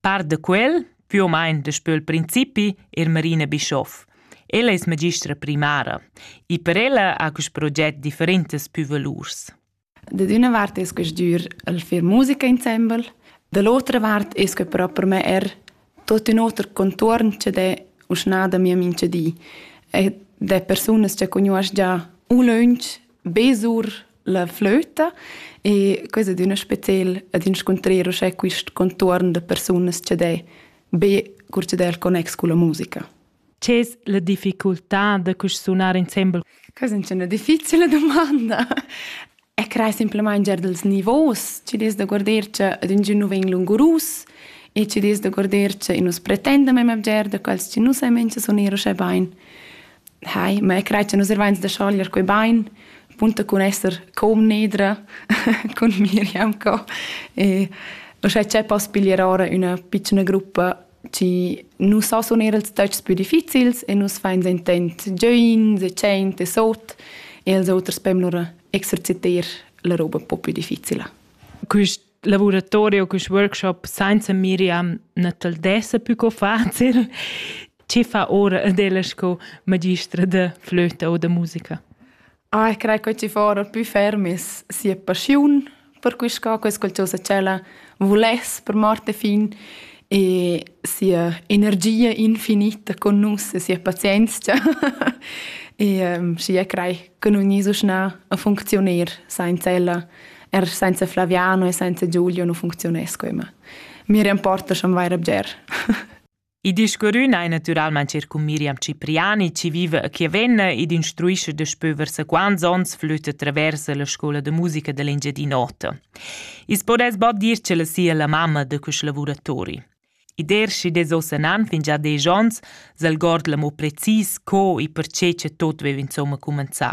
Par da quel, più o meno daspö il principi, è Marina Bischoff. Ella es magistra primara e per ella ha quist proget differentas pü valurs. Da d'üna vart es que stür el fer musica insembel, da l'otra vart es que però per me er tot ün oter contuorn che d'è uschna da mia mincha di. E d'è persunas che cugnuosch già ulöntsch be sur la flöta e quai ad üna spetel ad inscuntrer uschè quist contuorn da persunas cha d'he be cur cha d'he il connex culla musica. Ch'es la difficultà da cusch sunar insembel? Questa è una difficile domanda. E crei simplesmente già dels nivos, ci des da guarder che ad ingin nu vegn lungurus e ci des da guarder che i nus pretendem a giar da quels che nus ai mengia suner uschè bain. Hai, ma io crei che nus ervains da schoglier quei bain, punta cun esser comnedra cun Miriam co. E uschè c'è poss piglier ora üna pitschna gruppa chi nu so suner ils töchs pü difficils e nus fains intent giains e tschient e sot e als oters pem lura exerciter la roba un po pü difficila. Quist lavoratorio cus workshop sainza Miriam na t'el dessa pü co facil. Chi fa ora adella sco magistra de flöta o de musica? Ah, ich credo che ci fora più fermis sia passiun per quest ca questa qualcosa cella volesse per Marte fin e sia energia infinita con nus e sia pazienza e um, și e crei că nu nisu scna a funcționer senza ella er senza Flaviano e senza Giulio non funzionesch immer. Mir importa schon vaira bger. I discurrün ei naturalmain cer cun Miriam Cipriani, ci vive a Chiavenna ed instruisce daspö versa quants ons flütte traversa la scola de musica dell'Engiadin'Ota. Is podes bod dir ce la sia la mamma de questi lavoratori. I dershi des osanan fin già desch ons, s'algord l'amo precis co e perché ce tot vev insomma cumanzà.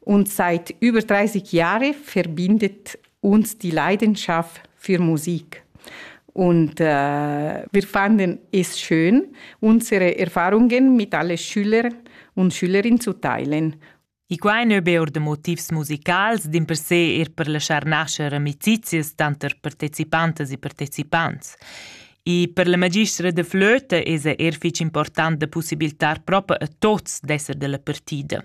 und seit über 30 Jahren verbindet uns die Leidenschaft für Musik. Und äh, wir fanden es schön, unsere Erfahrungen mit allen Schülern und Schülerinnen zu teilen. I quai nu be or da motivs musicals, din per se er per laschar nascher amicizias tanter partecipantas e partecipants. E per la magistra de flöte es er fich important da possibiltar propa a tots d'esser della partida.